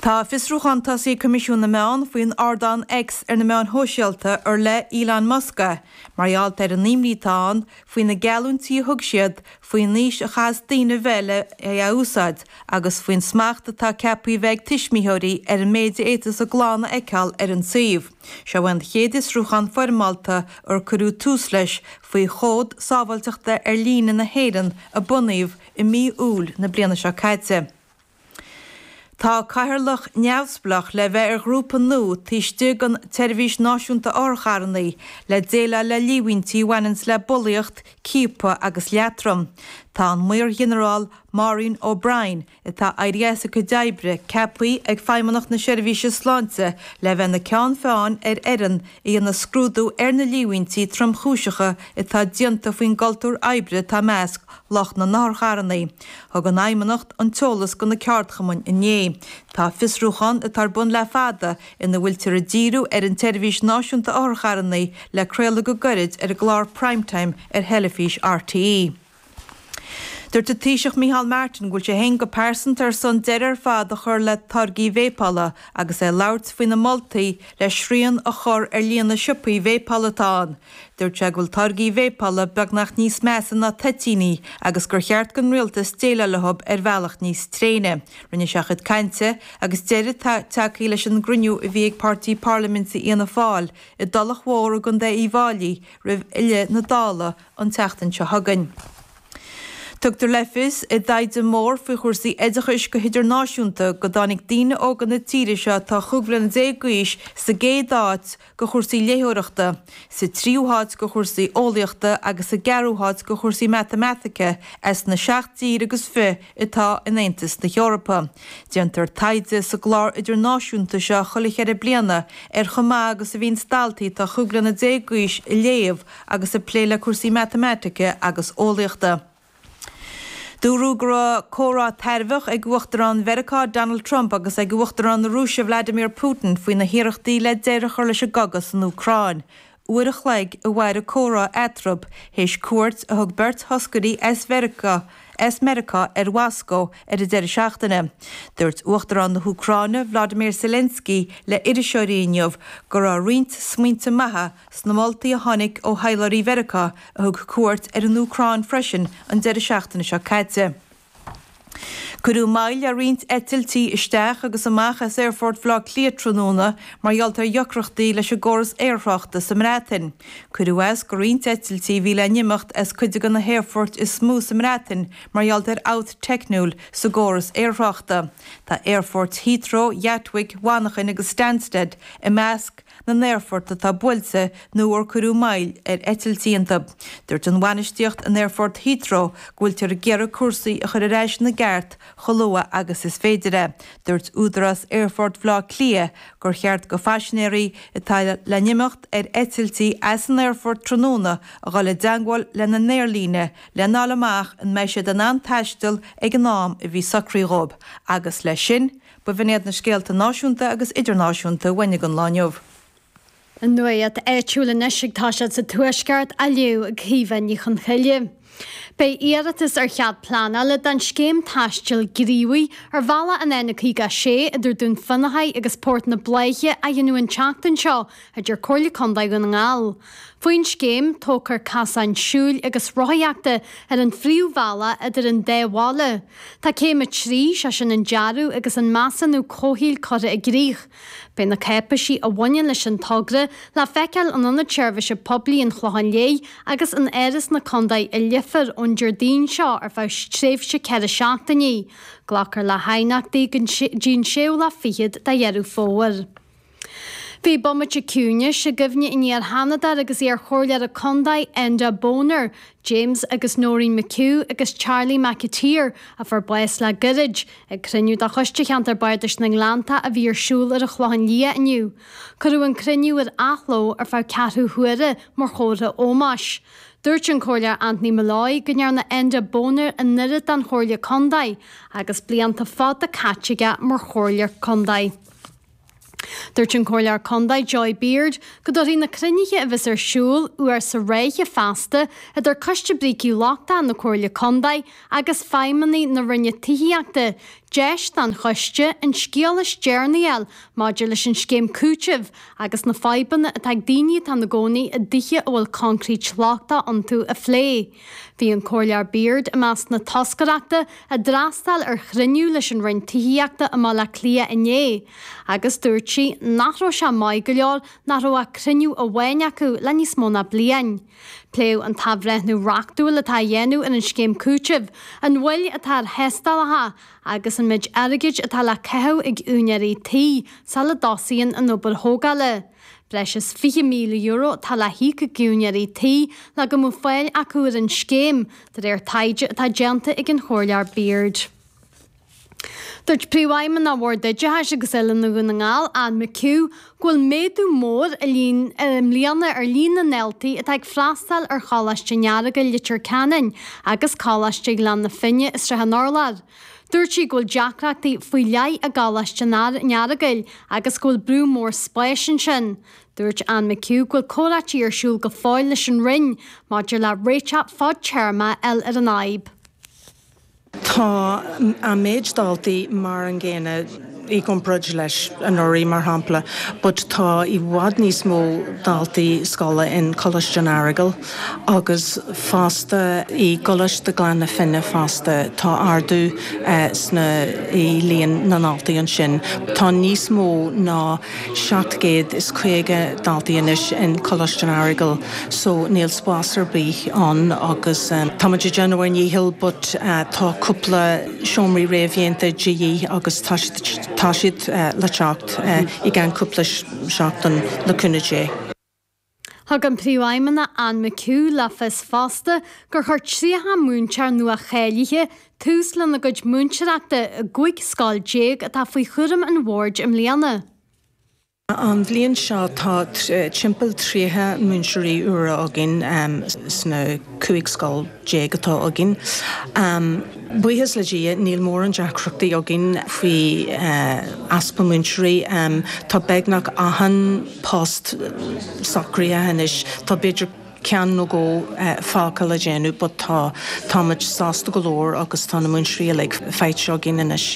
Tá fiosrúchán tosaithe ag Coimisiún na Meán faoin ardán X ar na meáin shóisialta ar le Elon Musk é mar gheall ar an imní atá ann faoi na geallúintí a thug siad faoin aois a chaithfeas daoine bheith le é a úsáid agus faoin smacht atá ceaptha a bheith ag tuismitheoirí ar an méid a fhéadfas a gclann a fheiceáil ar an suíomh. Seo an chéad fhiosrúchán foirmeálta ar cuireadh tús leis faoi Chód Sábháilteachta Ar Líne na hÉireann a bunaíodh i mí Iúil na bliana seo caite. Tá Cathaoirleach neamhspleách le bheith ar ghrúpa nua taobh istigh den tSeirbhís Náisiúnta Otharcharrannaí le déileáil le líomhaintí a bhaineanns le bulaíocht, ciapadh agus leatrom. Tá an Maor-Ghinearál Maureen O'Brien, atá éirithe as a cuid oibre, ceaptha ag Feidhmeannacht na Seirbhíse Sláinte le bheith ina ceann feadhain ar fhoireann a dhéanfaidh scrúdú ar na líomhaintí tromchúiseacha atá déanta faoin gcultúr oibre atá i measc lucht na nOtharcharrannaí. Thug an Fheidhmeannacht an t-eolas do na ceardchumainn inné. Tá fiosrúchán atá ar bun le fada, ina bhfuiltear ag díriú ar an tSeirbhís Náisiúnta Otharcharrannaí, le craoladh go gairid ar an gclár Prime Time ar theilifís RTÉ. Dúirt an Taoiseach Micheál Martin go bhfuil sé féin go pearsanta ar son deireadh ar fad a chur le táirgí véipeála agus é ag labhairt faoi na moltaí le srian a chur ar líon na siopaí véipeála atá ann. Dúirt sé go bhfuil táirgí véipeála beagnach níos measa ná toitíní agus gur cheart don rialtas déileáil leo ar bhealach níos tréine. Rinne sé a chuid cainte agus deireadh tagtha leis an gcruinniú a bhí ag páirtí parlaiminte Fhianna Fáil i dTulach Mhór i gContae Uíbh Fháilí roimh fhilleadh na Dála an tseachtain seo chugainn. Tugtar le fios i dtaighde mór faoi chúrsaí oideachais go hidirnáisiúnta go dtáinig daoine óga na tíre seo atá chúig bliana déag d'aois sa gcéad áit go cúrsaí léitheoireachta, sa tríú háit go cúrsaí eolaíochta agus sa gceathrú háit go cúrsaí matamaitice as na seacht dtír agus fiche atá in Aontas na hEorpa. Déantar taighde sa gclár idirnáisiúnta seo chuile cheithre bliana ar chomh maith agus a bhíonns daltaí atá chúig bliana déag d'aois a léamh agus a plé le cúrsaí matamaitice agus eolaíochta. Dúradh go raibh comhrá tairbheach ag Uachtarán Mheiriceá Donald Trump agus ag Uachtarán na Rúise Vladimir Putin faoi na hiarrachtaí le deireadh a chur leis an gcogadh san Úcráin. Uair a chloig a mhair an comhrá eatarthu, théis cuairt a thug beirt thoscairí as Meiriceá ar Mhoscó ar an deireadh seachtaine. Dúirt Uachtarán na hÚcráine Volodymyr Zelensky le iriseoirí inniu go raibh roinnt smaointe maithe Sna moltaí a tháinig ó thaidhleoirí Mheiriceá a thug cuairt ar an Úcráin freisin an deireadh seachtaine seo caite, cuireadh moill le roinnt eitiltí isteach agus amach as aerfort Bhaile Átha Cliath tráthnóna mar gheall ar dheacrachtaí leis an gcóras aerthráchta sa mBreatain. Cuireadh as go roinnt eitiltí a bhí le n-imeacht as cuid de na haerfoirt is mó sa mBreatain mar gheall ar fhabht teicniúil sa gcóras aerthráchta. Tá aerfoirt Heathrow, Ghatwick, Mhanachain agus Stansted i measc na n-aerfort atá buailte nó ar cuireadh moill ar eitiltí iontu. Dúirt an bhainistíocht in Aerfort Heathrow go bhfuiltear ag iarraidh cúrsaí a chur ar ais ina gceart chomh luath agus is féidir é. Dúirt Údarás Aerfort Bhaile Átha Cliath gur cheart do phaisinéirí atá le n-imeacht ar eitiltí as an aerfort tráthnóna a dhul i dteagmháil lena n-aerlíne lena fháil amach an mbeidh siad in ann taisteal ag an am a bhí socraithe dhóibh agus, leis sin, B'in iad na scéalta náisiúnta agus idirnáisiúnta a bhain leis an lá inniu. An nuacht áitiúil anois ag tosú sa Tuaisceart á léamh ag Caoimhe Ní Chonchoille. Beidh iarratas ar chead pleanála don scéim taistil gníomhaigh ar bhealach an N56 idir Dún Fionnachaidh agus Port na Bláiche á dhéanamh an tseachtain seo, a deir Comhairle Contae Dhún na nGall. Faoin scéim, tógfar casáin siúil agus rothaíochta ar an phríomhbhealach idir an dá bhaile. Tá céim a trí, sé sin an dearadh agus an measúnú comhshaoil curtha i gcrích. Beidh na cáipéisí a bhaineann leis an togra le feiceáil in Ionad Seirbhíse Poiblí an Chlocháin Léith agus in Áras na Contae i Leifear ón Déardaoin seo ar feadh tréimhse ceithre seachtainí. Glacfar le haighneachtaí go dtí an séú lá fichead de Dheireadh Fómhair. Bhí bomaite ciúinis i gcuimhne an iar-Sheanadóra agus iar-Chomhairleora Condae, Enda Bonner, James agus Noreen McHugh agus Charlie McAteer, a fuair bás le goirid, ag cruinniú de Choiste Cheantar Bardais na nGleannta a bhí ar siúl ar an Chlochán Liath inniu. Cuireadh an cruinniú ar athló ar feadh ceathrú huaire mar chomhartha ómáis. Dúirt an Comhairleoir Anthony Molloy go ndearna Enda Bonner an oiread don Chomhairle Condae agus blianta fada caite aige mar Chomhairleoir Condae. Dúirt an Comhairleoir Condae Joy Beard go dtabharfaidh na cruinnithe a bheas ar siúl uair sa ráithe feasta idir Coiste Brící Lochtacha na Comhairle Condae agus feidhmeannaigh na Roinne Tithíochta deis don Choiste an scéal is deireanaí a fháil maidir leis an scéim cúitimh agus na fadhbanna atá ag daoine atá ina gcónaí i dtithe a bhfuil concrete lochtach iontu a phlé. Bhí an Comhairleoir Beard i measc na toscaireachta a d'fhreastail ar chruinniú leis an Roinn Tithíochta i mBaile Átha Cliath inné agus dúirt sí nach raibh sé maith go leor nach raibh ach cruinniú amháin acu le níos mó ná bliain. Pléadh an t-athbhreithniú reachtúil atá á dhéanamh ar an scéim cúitimh, an mhoill atá ar thástálacha agus an méid airgid atá le caitheamh ag úinéirí tí sula dtosaíonn an obair thógála. Breis is €20,000 atá le híoc ag úinéirí tí le go mbeadh fáil acu ar an scéim, de réir taighde atá déanta ag an Chomhairleoir Beard. Dúirt Príomhfheidhmeannach Bhord Oideachais agus Oiliúna Dhún na nGall, Anne McHugh, go bhfuil méadú mór i mbliana ar líon na ndaltaí atá ag freastáil ar Choláiste an Earagail, Leitir Ceanainn, agus Coláiste Ghleann na Finne i Sraith an Urláir. Dúirt sí go bhfuil deacrachtaí faoi leith i gColáiste an Earagail agus go bhfuil brú mór spáis ansin. Dúirt Anne McHugh go bhfuil comhráití ar siúl go fóill leis an Roinn maidir le réiteach fad-téarma a fháil ar an fhadhb. Tá an méid daltaí mar an gcéanna. i gcomparáid leis anuraidh, mar shampla, but tá i bhfad níos mó daltaí scoile in Coláiste an Earagail agus fosta i gColáiste Ghleann na Finne fosta, tá ardú sna, i líon na ndaltaí ansin. Tá níos mó ná 750 daltaí anois in Coláiste an Earagail so níl spás ar bith ann agus táimid ag déanamh ár ndícheall but tá cúpla, seomraí réamhdhéanta de dhíth agus tá siad le teacht i gceann cúpla seachtain, le cúnamh Dé. Thug an Príomhfheidhmeannach Anne McHugh le fios fosta gur chuir 30 múinteoir nua-cháilithe tús lena gcuid múinteoireachta i gcúig scoil déag atá faoi chúram an Bhoird i mbliana. An bhliain seo tá timpeall 30 múinteoirí úra againn sna 15 scoil atá againn. Buíochas le Dia níl mórán deacrachtaí againn faoi easpa múinteoirí. Tá beagnach achan post socraithe anois, tá b'fhéidir ceann nó dhó fágtha le déanamh but tá táimid sásta go leor agus tá na múinteoirí uilig faighte againn anois.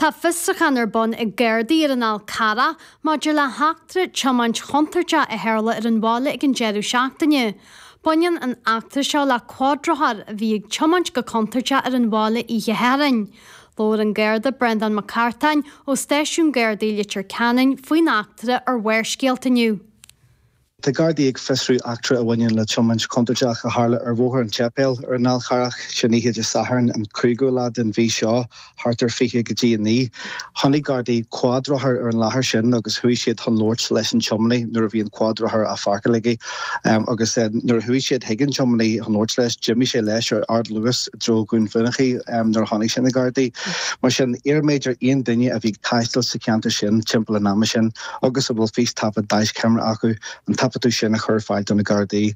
Tá fiosruchán ar bun ag Gardaí ar an Fhál Charrach maidir le heachtra tiomáint chontúirteach a tharla ar an bhaile ag an deireadh seachtaine. Baineann an eachtra seo le cuadrothar a bhí ag tiomáint go contúirteach ar an bhaile oíche Shathairn. Labhair an Garda Brendán Mac Cartáin ó Stáisiún Gardaí Leitir Ceanainn faoin eachtra ar Bharrscéalta inniu. Tá Gardaí ag fiosrú eachtra a bhaineann le tiomáint chontúirteach a tharla ar Bhóthar an tSeipéil ar an Fhál Charrach, sin oíche Dé Sathairn an cúigiú lá den mhí seo, thart ar fiche go dtí a naoi. Chonaic Gardaí cuadrothar ar an láthair sin agus chuaigh siad chun labhairt leis an tiomanaí nuair a bhí an cuadrothar á pháirceáil aige agus nuair a chuaigh siad chuig an tiomanaí chun labhairt leis, d'imigh sé leis ar ardluas i dtreo Dhún Fionnachaidh nuair a chonaic sé na Gardaí. Mar sin, iarraimid ar aon duine a bhí ag taisteal sa cheantar sin timpeall an ama sin, agus a bhfuil fístaifead deaischeamara acu, an taifeadadh sin a chur ar fáil do na Gardaí.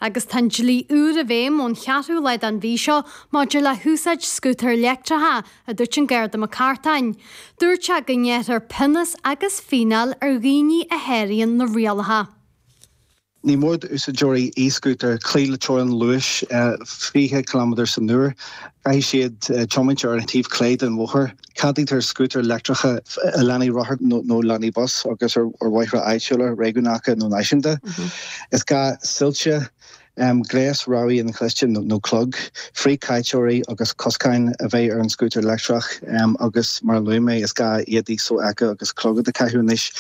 Agus tá an dlí úr i bhfeidhm ón cheathrú lá den mhí seo maidir le húsáid scútair leictreacha, a dúirt an Garda McCartan. Dúirt sé go ngearrfar pionós agus fíneáil ar dhaoine a sháraíonn na rialacha. Ní mór d'úsáideoirí e-scútair cloí le teorainn luais 20 ciliméadar san uair. Caithfidh siad tiomáint ar an taobh clé den bhóthar. Ceadaítear scútair leictreacha i lánaí rothar nó lánaí bus agus ar bhóithre áitiúla, réigiúnacha nó náisiúnta. Is gá soilse, gléas rabhaidh inchloiste nó clog, frithchaiteoirí agus coscáin a bheith ar an scútar leictreach agus, mar a luaigh mé, is gá éadaí sofheicthe agus clogad a chaitheamh anois.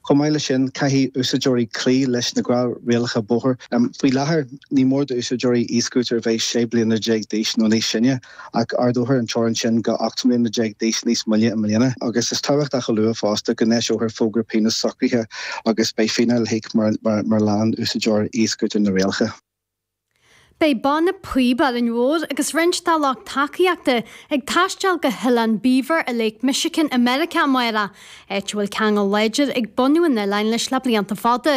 Chomh maith leis sin, caithfidh úsáideoirí cloí leis na gnáthrialacha bóthair. Faoi láthair, ní mór d'úsáideoirí e-scútair a bheith 16 bliana d'aois nó níos sine, ach ardófar an teorainn sin go 18 mbliana d'aois níos moille i mbliana, agus is tábhachtach a lua fosta go n-eiseofar fógra pionóis socraithe agus beidh fíneáil le híoc mura leanann úsáideoir e-scútair na rialacha. Beidh Banna Píob Árainn Mhór agus roinnt dá lucht tacaíochta ag taisteal go hOileán Beaver i Lake Michigan i Meiriceá amárach, áit a bhfuil ceangal láidir ag bunadh an oileáin leis le blianta fada.